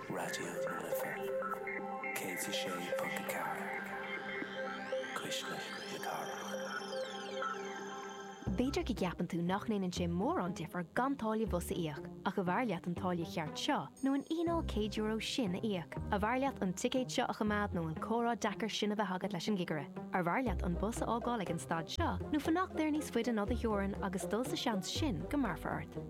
Raidió na Life 106.4, Cuisle na Cathrach. B'fhéidir go gceapann tú nach ndéanann sé mórán difear gan táille bhus a íoc, ach arbh fhearr leat an táille cheart seo nó an fhíneáil €100 sin a íoc? Arbh fhearr leat an ticéad seo a choimeád nó an comhrá deacair sin a bheith agat leis an gcigire? Arbh fhearr leat an bus a fhágáil ag an stad seo nó fanacht air níos faide ná do theorainn agus dul sa seans sin go mbéarfar ort?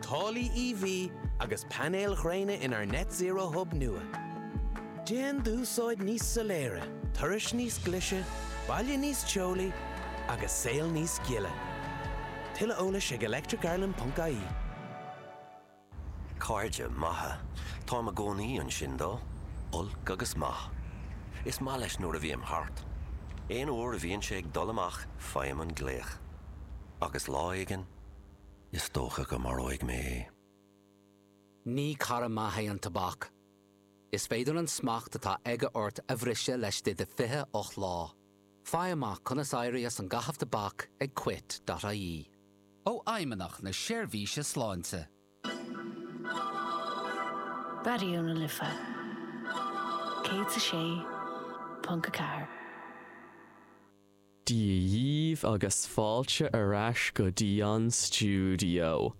Táillí EV agus painéil ghréine inár Net Zero Hub nua. Déan d'úsáid níos soiléire, turas níos glise, baile níos teolaí agus saol níos gile. Tuilleadh eolais ag electric-ireland.ie. Cairde maithe. Táim i gcónaí ansin dó. Olc agus maith. Is maith leis nuair a bhím thart. Aon uair a bhíonn sé ag dul amach faighim an glaoch. Agus lá éigin. Is dócha go maróidh mé é. Ní cara maith é an tobac. Is féidir an smacht atá aige ort a bhriseadh laistigh de 28 lá. Faigh amach conas éirí as an gcaitheamh tobac ag quit.ie. ó Fheidhmeannach na Seirbhíse Sláinte. Raidió na Life 106.4. Dia dhíbh agus fáilte ar ais go dtí an stiúideo.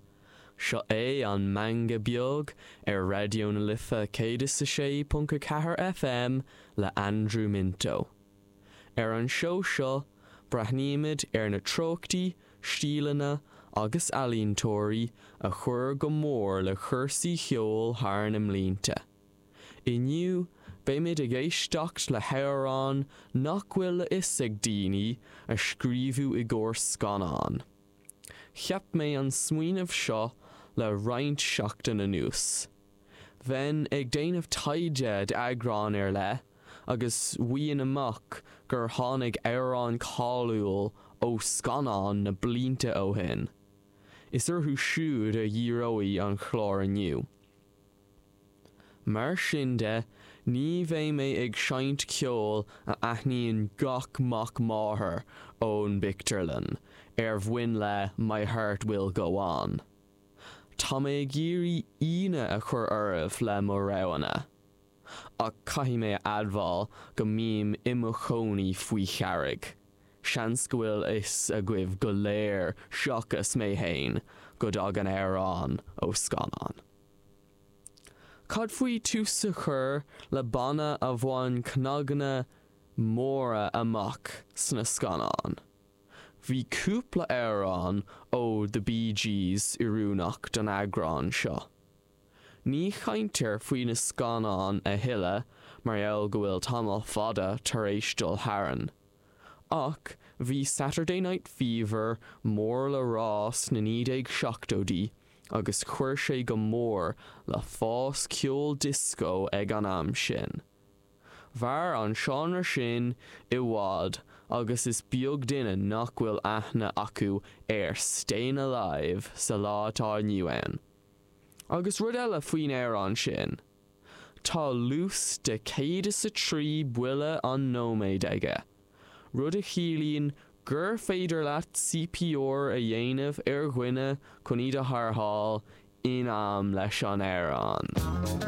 Seo é an Meangadh Beag ar Raidió na Life 106.4 FM le Andrew Minto. Ar an seó seo, breathnaímid ar na treochtaí, stíleanna agus ealaíontóirí a chuir go mór le cúrsaí cheoil thar na mblianta. Inniu, beimid ag éisteacht le hamhráin nach bhfuil a fhios ag daoine a scríobhadh i gcomhair scannán. Cheap mé an smaoineamh seo le roinnt seachtain anuas. Bheinn ag déanamh taighde d'eagrán ar leith agus bhfaighinn amach gur tháinig amhrán cáiliúil ó scannán na blianta ó shin. Is orthu siúd a dhíreoidh an chlár inniu. Mar sin de, ní bheidh mé ag seinnt ceol a aithníonn gach mac máthar ón bpictiúrlann ar nós My Heart Will Go On. Tá mé ag iarraidh ionadh a chur oraibh le mo roghanna, ach caithfidh mé a admháil go mbím i mo chónaí faoi charraig, seans go bhfuil fhios agaibh go léir seachas mé fhéin go dtagann na hamhráin ó scannáin. Cad faoi tús a chur le banna a bhain cnaganna móra amach sna scannáin? Bhí cúpla amhrán ó The Bee Gees oiriúnach don eagrán seo. Ní chaintear faoi na scannáin a thuilleadh mar gheall go bhfuil tamall fada tar éis dul tharainn, ach bhí Saturday Night Fever mór le rá sna 1970idí, agus chuir sé go mór le fás ceol dioscó ag an am sin. Mhair an seánra sin i bhfad agus is beag duine nach bhfuil aithne acu ar Stayin' Alive sa lá atá inniu ann. Agus rud eile faoin amhrán sin. Tá luas de 103 buille an nóiméad aige, rud a chiallaíonn gur féidir leat CPR a dhéanamh ar dhuine chun iad a tharrtháil in am leis an amhrán.